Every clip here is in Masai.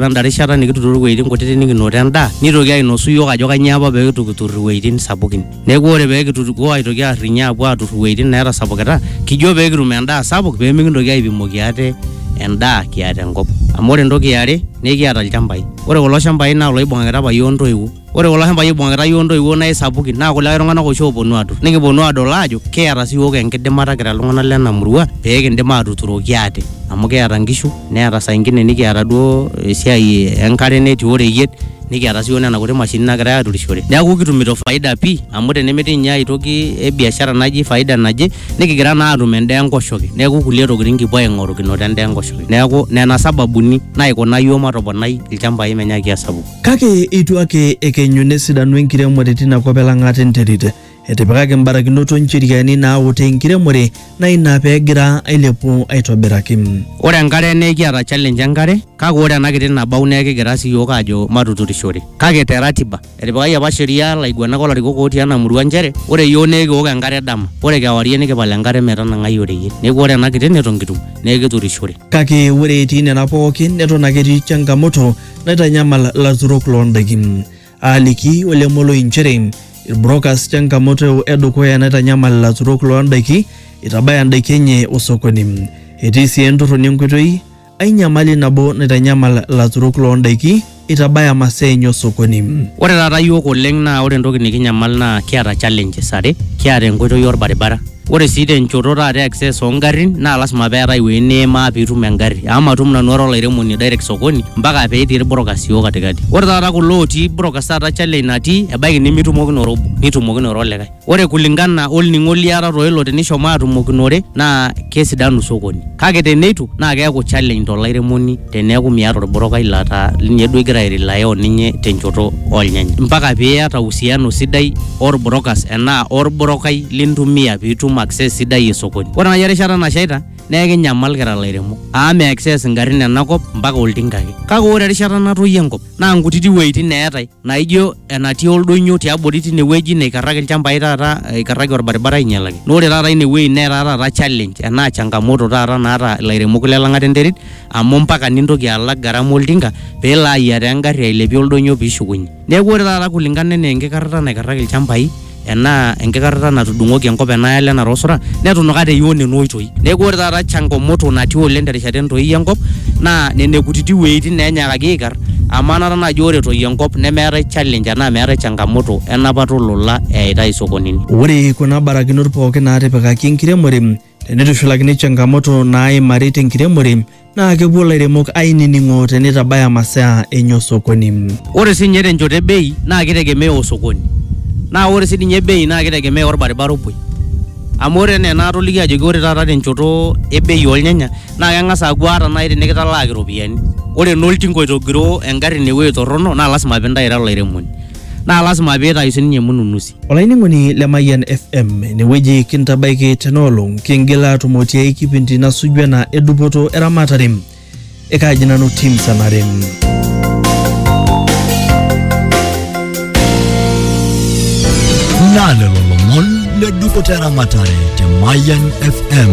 enda rishata nikituturo iwuejitin kutitik nikinoto endaa nitoki ainosu iyiook ajo kanyioo apa pee kitu kitur iwuejitin sapukin neeku ore pee kitutukuo aitoki arrinye apuo atur iwuejitin neetasapukita kijo pee kitum endaa sapuk pee mikintoki aipimoki ate endaa kiata enkop amu ore entoki iare naa ekiata ilchambai ore kulo shambai naa iloibung'akita apa iyiook intoiwuo. ore kulo shambai oibung'akita yiok intoiwuo naa isapukin naa kulikae tung'anak oshi ooponu atur nikiponu adol aajo kiata sii yiok enkidimata kira iltung'anak lena murua pee kindim atuturoki ate amu kiata inkishu neeta saa ingine nikiata duo esiai enkare netii oreyiet nikiata sii yiok nena kuti mashinini nagirae aturishore neeku kitumito faida pii amu tenemetii ninye aetoki e biashara naji faida naje nikigira naa atum endaa enkoshoke neeku kulie tokitin kipuo aing'oru kinoto endaa enkoshoke neeku nena sababuni naikuna yiok matoponai ilchambai menyaaki asapuku. Kake eitu ake ekenyu nesidanu enkiremore tina kop e Lang'at enterit. Etipikaki mbarakinot o ncheriani naautaa enkiremore naa ina pee egira ailepu aitobiraki. Ore enkare naa ekiata challenge enkare kake ore ena kiti nabau naa ekigira sii iyiook aajo matuturishore kake te ratiba. Etipikaki apa sheria ilaiguanak o larikok ootii ena murua nchere ore iyiook naa ekiok enkare dama ore kewarie nikipal enkare metanang'ai oreyiet. Neeku ore ena kiti neton kitum naa ekiturishore. Kake ore etii nena pookin neton ake etii changamoto naitanyamal laturok loo ndaiki. Aaliki Ole Moloi nchere ilbrokas changamoto e dukuya naitanyamal laturok loo ndaiki eitabaya ndaiki enye osokoni. Etii sii entorroni enkoitoi ai nyamali nabo naitanyamal laturok loo ndaiki. itabaya masaa enye osokoni. Ore taata iyiook oleng naa ore entoki nikinyamal naa kiata challenges are, kiata enkoitoi orbaribara, ore sii tenchoto taata e access oo ngarrin naa lasima peetae ewueji niimaa piitum engarri amu matum nanu ara olairemoni direct sokoni mpaka petii irbrokers iyiook katikati. Ore taata kulo ootii brokers taata challenge natii ebaiki nimitumokinoto obo nitumokinote olikae. Ore kulingana olning'o liata toilo tinishomo atumokinore naa kesidanu sokoni. Kake teneitu naa keaku challenge tolairemoni teneaku miata olbrokai lataa ninye duo igira airelaya oninye tenchoto oolnyanya. Mpaka piata uhusiano sidai olbrokas enaa olbrokai lintumia piitum access sidai e sokoni. Ore nai erishata nashaita neekinyamal kira lairemok amu meaccess ingarrin enakop mpaka oltinka ake. Kake ore erishata natoyio enkop. naa nkutiti wueitin eetae naijo enatii oldonyo tiabori tine wueji neikarraki ilchambai taata eikarraki orbaribara ainyalaki naa ore taata ine wueji netaa taata challenge enaa changamoto taata naata ilairemok le lang'ata enterit amu mpaka nintoki alak gharama oltinka peelo ayiataa engarri ailepie oldonyo piishukunyie neeku ore taata kulingana enaa enkikarrata naikarraki ilchambai enaa enkikarrata natudung'oki enkop enaalo enara osura netunuka te Ion nena oitoi. Neeku ore taata changomoto natii oleng terishata entoii enkop naa nene kutiti wueitin neenyaakaki aikar amu anata naaji ore etoyio enkop nemeetae challenge enaa meetae changamoto enapata olola eyaitae isokonini. Ore kuna barakinot pooki naatipikaki enkiremore Teneitushulakini changamoto naaimari tenkiremore naa kepuo lairemok ainining'o teneitabaya masaa enye osokoni. Ore sii ninye tenchoto e bei naa keitegemea osokoni. Naa ore sii ninye bei naa keitegemea olbaribara opuoi. Amu ore enaa enaatolikio ajoki ore taata tenchoto e bei oolnyanya naa keng'as aaku ata nai tinikitalaaki iropiani ore naa oltinka oitogiroo engarri inewuei torrono naa lasima piintayu ira olairemoni. Naa lasima piitayu sininye mununusi. Olainining'oni le Mayian FM inewueji kintabaiki tenaolong kingila atumo tiai kipindi nasuju ena edupoto eramatare ekaaji nanu tim sanare. Naa lelo lomon le dupoto eramatare te Mayian FM.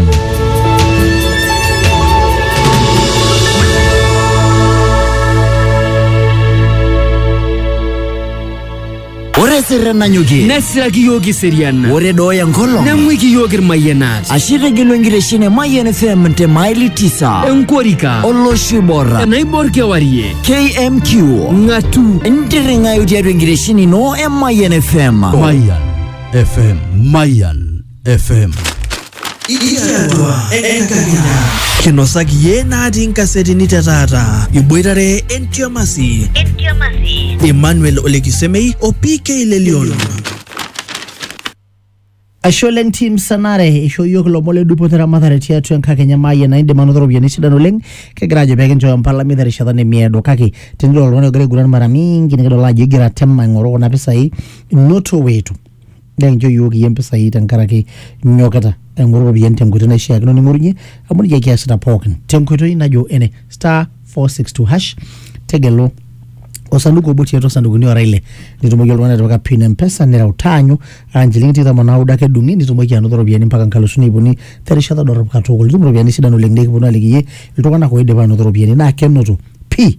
Ore sirre nanyokie nesiraki iyiook iserian ore dooya enkolong neng'uiki iyiook irmayianat ashe etegelua enkitesheni e Mayian FM te maili tisa enkorika olosho oibor enaibor kewarie KMQ ng'atu ntirring'ayu tiatua enkitesheni ino e Mayian FM. Mayan FM Mayan FM. Ikiatua enkakenya. Kinosaki iyie natii nkasetini te taata. Iboitare entiamasi. Emmanuel Olekisemei o PK Lelion. Aisho oleng team Sanare eishoo iyiook ilomon le dupoto eramatare tiatua enkakenya maayie naa indim anoto iropiyiani sidan oleng kegira ajo pee kinchooyo mpalami terishata nemiedo kake tenidol oltung'ani ogira aiguran mara mingi nikidol ajo igira atem aing'oru kuna pisai noto wetu naa enchoo iyiook iyie impisai tenkaraki inyokita aing'oru iropiyiani tenkoitoi naishiakino ning'orunye amu nejia kiasita pookin tenkoitoi najo ene star 462 hash tegelu osanduku obo tiatua osandukuni ora ile nitumoki oltung'ani atipika pin empesa nireu taanyu aa nchilingini tikitam onaudo ake edung'i nitumoki anoto iropiyiani mpaka nkalusuni ip uni terishata dorrop katukul itum iropiyiani sidan oleng nikiponu aliki iyie iltung'anak oidipa anoto iropiyiani naa kenoto pii